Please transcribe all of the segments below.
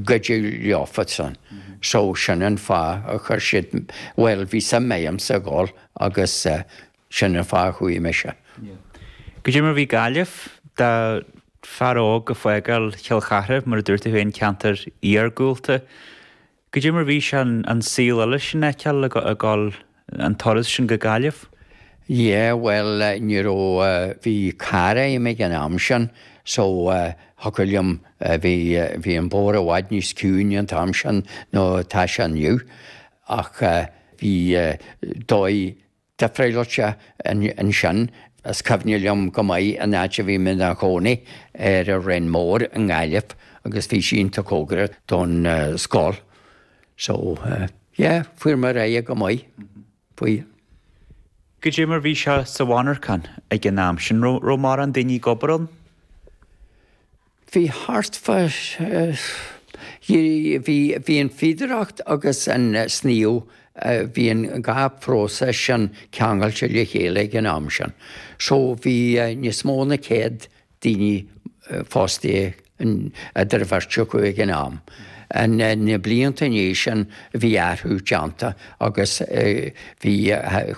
cuidiú leofa-san. So sin an fáth a chuir siad, bhuel bhí suim agamsa a dhul agus sin an fáth a chuaigh mise. Goidé mar bhí Gaillimh, d'fhear óg ag fágáil Chill Chartha mar a dúirt tú féin ceantar iargúlta, goidé mar bhí sé an saol eile sin a fheiceáil a dhul, an turas sin go Gaillimh? Yeah, bhuel, ní raibh, bhí carr a'm ag an am sin so thiocfadh liom, bhí, bhí an bóthar i bhfad níos ciúine an t-am sin nó atá sé inniu ach bhí dóigh difrialte ansin is cuimhne liom go maith an áit a bhí mé 'na chónaí ar an Rinn Mór i nGaillimh agus bhí sí iontach cóngarach don scoil. So yeah, fuair mé ar aghaidh go maith. Goidé mar bhí sé sa mhonarchan ag an am sin raibh mórán daoine ag obair ann? Bhí thart fá bhí an fhíodóireacht agus an sníomh bhí an dhá phróiseas sin ceangailte le chéile ag an am sin. So bhí níos mó ná céad daoine fostaithe eadar an bheirt acu ag an am. Ins na blianta i ndiaidh sin bhí athrú déanta agus bhí,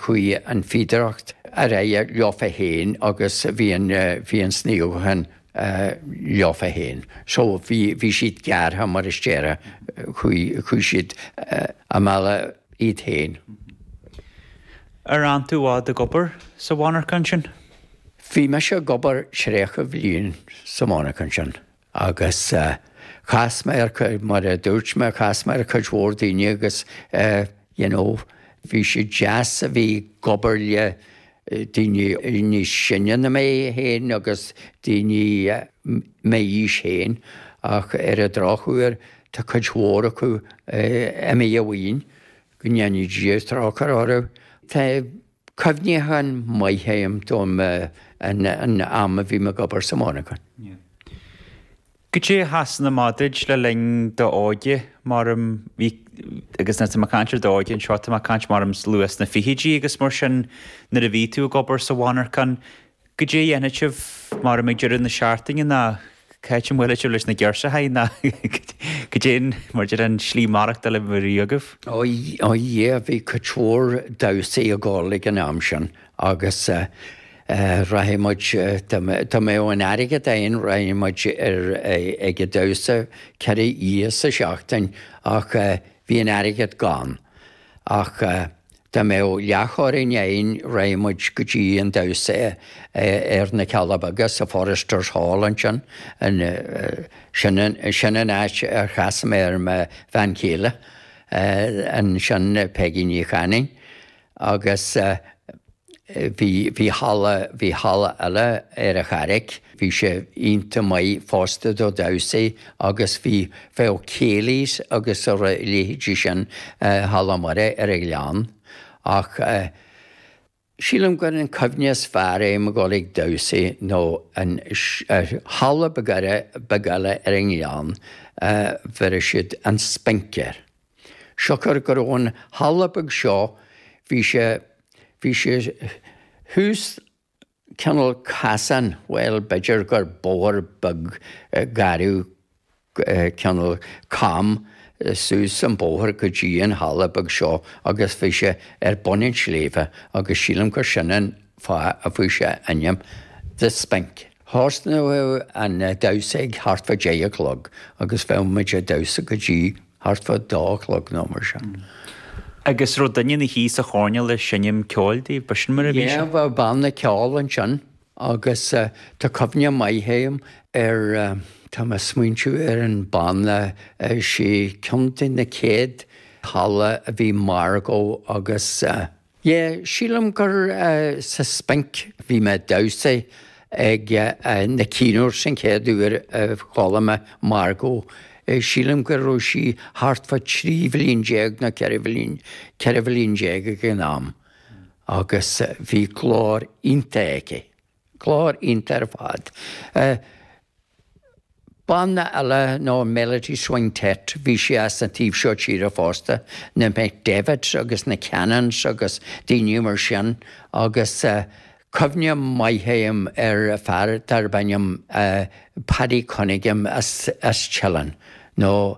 chuaigh an fíodóireacht ar aghaidh leofa fhéin agus bhí an, bhí an sníomhachán leofa fhéin. So bhí, bhí siad gearrtha mar a déarfá, chuaigh, chuaigh siad a mbealach iad fhéin. Ar fhan tú i bhfad ag obair sa mhonarcha ansin? Bhí mise ag obair tríocha bliain sa mhonarcha ansin agus chas mé ar, mar a dúirt mé, chas mé ar cuid mhór daoine agus you know bhí sé deas a bheith ag obair le daoine níos sine ná mé féin agus daoine m'aois féin ach ar an drochuair tá cuid mhór acu imithe uainn, go ndéana Dia trócaire orthu. Cuimhní cinn maithe a'm don am a bhí mé ag obair sa mhonarchan. Goidé ansin maidir le linn d'óige, maram, bhí, agus nuair atá mé ag caint ar d'óige anseo, tá mé ag caint maram luath sna fichidí agus mar sin, nuair a bhí tú ag obair sa mhonarchan, Goidé a dhéanfadh sibh mar a bheadh deireadh na seachtaine nó cá háit a mbuailfeadh sibh leis na girseachaí nó cad é mar deir an slí maireachtáil a bhí agaibh? Ó Dhia, bhí cuid mhór damhsaí ag dhul ag an am sin agus rachadh muid, dá mbeadh an airgead againn rachadh muid ar ag an damhsa ceithre oíche sa seachtain ach bhí an airgead gann ach. Dá mbeadh leathchoróin againn rachadh muid go dtí an damhsa ar na Cealla Beaga sa Foresters Hall ansin, sin an áit ar chas mé ar mo bhean chéile ansin Peigí Ní Chanainn agus. Bhí halla bhí halla eile ar a charraic. Bhí sé iontach maith fosta do damhsaí agus bhí bhí oíche céilís agus a leithéidí sin Halla Muire ar a' Ghleann. Ach sílim gur an cuimhne is fearr liom ag dul chuig damhsaí nó an halla beag eile ar an Ghleann bheireadh siad an spinc air. Siocair go raibh an halla beag seo, bhí sé, bhí sé thuas cineál casán, bhuel, b'fhéidir gur bóthar beag gairid cineál cam suas an bóthar go dtí an halla beag seo agus bhí sé ar bun an tsléibhe agus sílim gur sin an fáth a fuair sé a ainm The Spink. Thosódh an damhsa ag thart fá deich a chlog agus bheadh muid a' damhsa go dtí. Thart fá dó a chlog nó mar sin. Agus raibh duine na shuí sa choirnéal ag seinm ceoil daoibh, ba sin mar a bhí sé? Yeah, bheadh banna ceoil ansin agus tá cuimhne mhaith agam ar, tá mé a' smaointiú ar an banna, sin ceann de na céad halla a bhí Margo agus eh, Yeah, sílim gur sa Spinc bhí mé ag damhsa ag ann cinn uair, sin an chéad uair a chuala mé Margo. Sílim go raibh sí thart fá trí bhliain déag nó ceithre bhliain, ceithre bhliain déag ag an am agus bhí glór iontach aici. Glór iontach ar fad. Eh, banna eile ná Melody Swingtet, bhí sí as an taobh seo tíre fosta, na McDevitts agus na Cannons agus daoine mar sin agus eh, cuimhne mhaith agam ar fear darb ainm eh, Paddy Cunningham as Teileann nó